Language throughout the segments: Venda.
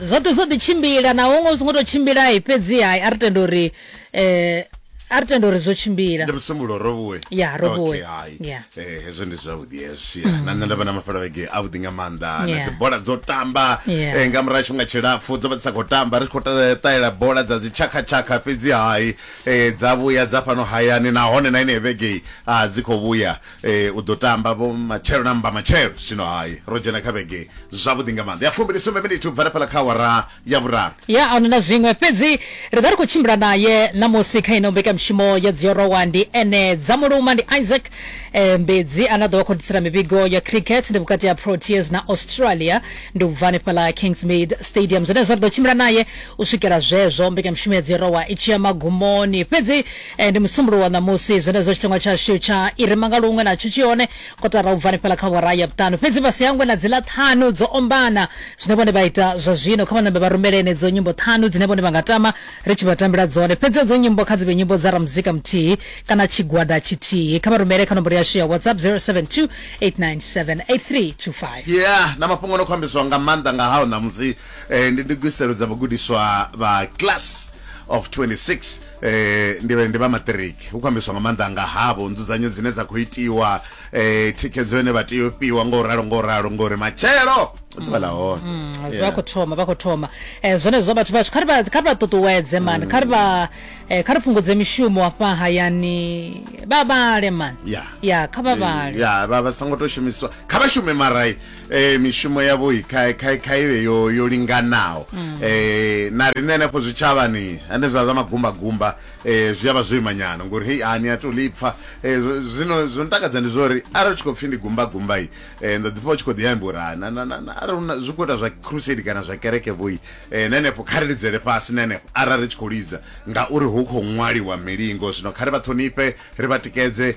zwoṱhe zwo ḓi tshimbila na huṅwe zwi ngo tou tshimbila fhedzi hai a ri tenda uri um a ri tenda uri zwo tshimbila ndi musumbulo robuwe ya robuwe eh, hezwo ndi zwavhuḓi hezwi mm. na nṋe nda vha na mafhala vhege avhuḓi nga maanḓa na dzi bola dzo tamba eh, nga murahu tshifhinga tshilapfu dzo vha dzi sa khou tamba ri tshi khou ṱalela bola dza dzi tshakhatshakha fhedzi hai eh, dza vhuya dza fhano hayani nahone na ine vhege a dzi khou vhuya Eh, u ḓo tamba vho matshelo na mbamatshelo zwino hai ro dzhena kha vhege zwavhuḓi nga maanḓa ya fumbili sumbe miniti u bva rafhala kha awara ya vhuraru ya a na zwiṅwe fhedzi ri ḓa ri khou tshimbila naye ṋamusi kha ino mbekanyamushumo ya dziorowa ndi ene dza muluma ndi isaac eh, mbedzi ane a ḓo vha khou ḓisela mivhigo ya cricket ndi vhukati ha proteas na australia ndi ubva hanefhala kingsmead stadium zwenezwo ri ḓo tshimbila naye u swikela zwezwo mbekanyamushumo ya dziorowa i tshi ya magumoni fhedzi Eh, ndi musumbulo wa ṋamusi zwenezwo tshiteṅwa tshashu tsha i re manga luṅwe natsho tshi hone kotara u bva hanefhala kha vhora ya vhuṱanu fhedzi vha si hangwe na dziḽa ṱhanu dzo ombana zwine vhone vha ita zwa zwino kha vhanambe vha rumele enedzo nyimbo ṱhanu dzine vhone vha nga tama ri tshi vha tambela dzone fhedzi edzo nyimbo kha dzi vhe nyimbo dza ramuzika muthihi kana tshigwada tshithihi kha vha rumele kha nomboro yashu ya whatsapp 072 897 8325 yeah na mafhungo no khou ambiswa nga maanḓa nga hao ṋamusi eh, ndi ndugiselo dza vhagudiswa vha class of 26 eh ndi ndi vha matric hu khou ambiswa nga maanḓa nga havho nzudzanyo dzine dza khou itiwa eh thikhedzo ine vha tea u fhiwa ngo ralo ngo ralo ngori matshelo ḓuvha ḽa hone Mm, vha Yeah. khou thoma vha khou thoma eh zwenezwo vhathu vhashu kha ri vha- kha ri vha ṱuṱuwedze mani kha ri vha eh, kha ri fhungudze mishumo afha hayani vha vhale mani Yeah. ya kha vha vhale ya vha vha songo to shumiswa kha vha shume marai eh mishumo yavho kha kha kha ivhe yo yo linganaho mm. eh na rine henefho zwitshavhani ane zwa zwa magumba gumba eh zwi avha zwo imanyana ngori hey ani a to lipfa eh zwino zwo ntakadza ndi zwori arali tshi khou pfi ndi gumba gumba yi eh ndo ḓi pfa tshi khou ḓi amba uri na na na arali una zwi khou ita zwa crusade kana zwa kereke vhoyi eh henefho kha ri lidzele fhasi henefho arali ri tshi khou lidza ngauri hu khou ṅwaliwa milingo zwino kha ri vha ṱhonifhe ri vha tikedze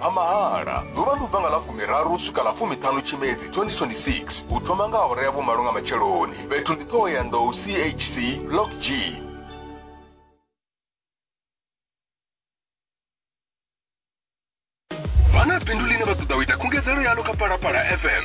a mahala ḓuvha ndi u bva nga ḽa fumiraru swika ḽa fumiṱhanu tshimedzi 2026 u thoma nga awara ya vhumalo nga matsheloni fhethu ndi ṱhoho ya nḓou chc block g vha na bindu ḽine vha ṱoḓa u ita khungedzelo yalo kha palapala fm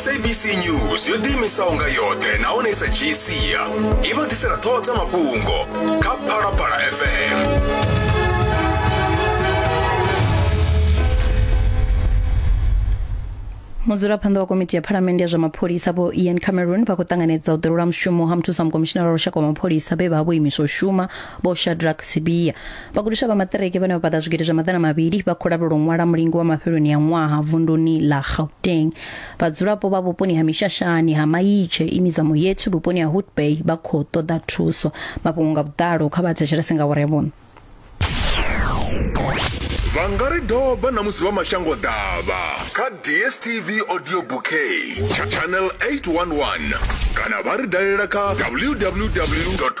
sabc news yo ḓiimisaho nga yoṱhe nahone i sa dzhii sia i vha ḓisela ṱhoho dza mafhungo kha phalaphala fm mudzulaphanḓa wa komiti ya phalamende ya zwa mapholisa vho ian cameron vha khou ṱanganedza u ḓelwa mushumo ha muthusa mukomishinara wa lushaka wa mapholisa vhe vha vho imiswa u shuma vho shadrack sibia vhagudiswa vha maṱiriki vhane vha paḓa zwigidi zwa maḓana mavhili vha khou lavhelwa u ṅwala mulingo wa mafheloni a ṅwaha vunduni ḽa gauteng vhadzulapo vha vhuponi ha mishashani ha maitshe ini dza muyethu vhuponi ha hood bay vha khou ṱoḓa thuso mafhungo nga vhuḓalo kha vha thetshelese nga vhore vhuno vha nga ri doba na musi vha mashango ḓavha kha dstv audio bouquet tsha channel 811 kana vha ri dalela kha www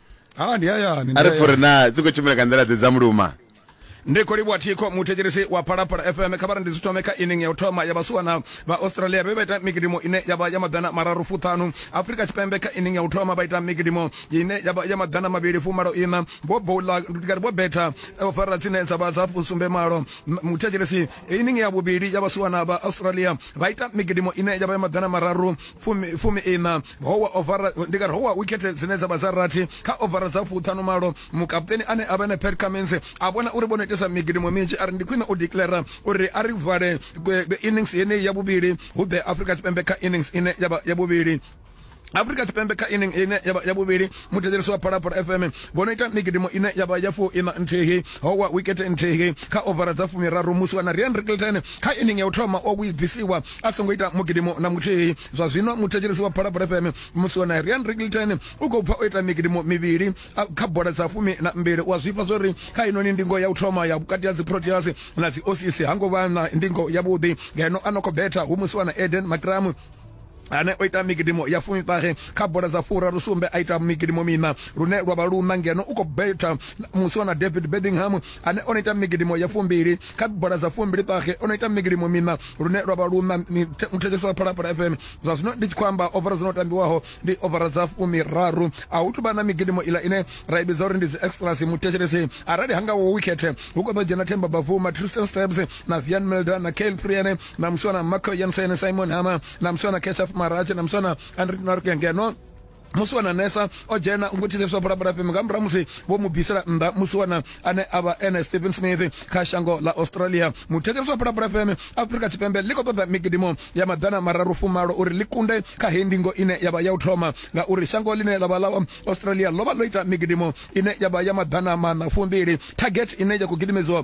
ha ndi hayani a ri pfuri na dzi khou tshimbila nga nḓila ḓe dza muluma ndi khou livhuwa thikho muthetshelesi wa phalaphala fm kha vha ri ndi zwi thome kha inning ya u thoma ya vhasiwana vha australia vhe vha ita mikidimo ine ya vha ya maḓana mararu fuṱhanu afrika tshipembe kha inning ya u thoma vha ita mikidimo ine ya vha ya maḓana mavhili fumalo ina vho boula ndikari vho betha o fara tsine dza vha dza sumbe malo muthetshelesi Iyi ndi nge ya vhuvhili ya vhasiwana vha Australia vha ita migidimo ine ya vha ya maḓana mararu fumi iṋa. Ho wa ovara ndi kari ho wa wikhethe dzine dza vha dza rathi kha ovara dza fuṱhanu malo. Mukaputeni ane a vha ene Pat Cummins a vhona uri vho no itesa migidimo minzhi a ri ndi khwine u declara uri a ri vale innings yeneyi ya vhuvhili hu ḓe Afrika Tshipembe kha innings ine ya vha ya vhuvhili. Afrika Tshipembe kha inning ine yavha ya vhuvhili muthetshelesi wa Phalaphala FM vho no ita migidimo ine yavha ya fu ina nthihi ho wa wicket nthihi kha ovara dza fumiraru musi wa na Rian Rickelton kha inning ya u thoma o bvisiwa a songo ita mugidimo na muthihi zwa zwino muthetshelesi wa Phalaphala FM musi wa na Rian Rickelton u khou bva o ita migidimo mivhili kha bola dza fumi na mbili wa zwifha zwori kha ino ni ndingo ya u thoma ya vhukati ha dzi Proteas na dzi Aussies hango vha na ndingo ya vhuḓi ngeno a no khou betha hu musi wa na Eden Makramu ane o ita migidimo ya fumiṱahe kha bola dza furaru sumbe a ita migidimo mina lune lwa vha luna ngeno u khou betha musi wana david bedingham ane o no ita migidimo ya fumbili kha bola dza fumbili ṱahe o no ita migidimo mina lune lwa vha luna muthetsheso wa phalaphala fm zwa zwino ndi tshi khou amba ovara dzo no tambiwaho ndi ovara dza fumiraru a hu tuvha na migidimo ila ine ra i vhidza uri ndi dzi extras muthetshelesi arali hanga wo wikhethe hu khou ḓo dzhena themba bavuma tristan stabs na vian melda na kale priene na musona marco jensen simon hama na musona keshaf marache na musona andrik norke ngeno musi wana nesa o dzhena u ngo thithiswa bulabula fheme nga murahu musi vho mu bvisela nnḓa musi wana ane a vha ene stephen smith kha shango ḽa australia muthetshelesi wa bulabula fheme afrika tshipembe ḽi khou ṱoḓa migidimo ya maḓana mararu fumalo uri ḽi kunde kha heyi ndingo ine ya vha ya u thoma ngauri shango ḽine ḽa vha ḽa australia ḽo vha ḽo ita migidimo ine ya vha ya maḓana maṋa fumbili target ine ya khou gidimedziwa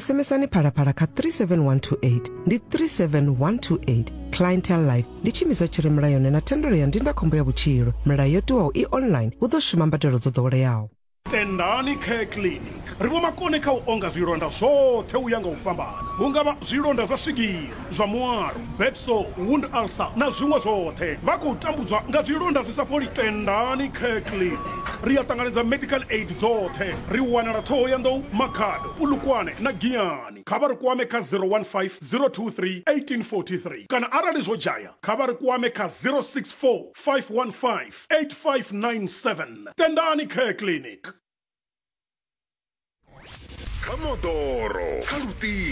SMSani phalaphala kha 37128 ndi 37128 clientele life ndi tshiimiswa tshi re mulayoni na thendelo ya ndindakhombo ya vhutshilo milayo yo tiwaho i online hu ḓo shuma mbadelo dzo ḓoweleaho tendani care clinic ri vho makone kha u onga zwilonda zwoṱhe u ya nga u fhambana hu nga vha zwilonda zwa swigiri zwa muwalo, bed sore, wound ulcer na zwiṅwe zwoṱhe. Vha khou tambudzwa nga zwilonda zwi sa fholi. Tendani Care Clinic ri a ṱanganedza medical aid dzoṱhe. Ri wanala Thohoyandou, Makhado, Polokwane na Giyani. Kha vha ri kwame kha 015 023 1843 kana arali zwo dzhaya kha vha ri kwame kha 064 515 8597. Tendani Care Clinic. Kha moḓoro, kha luṱingo.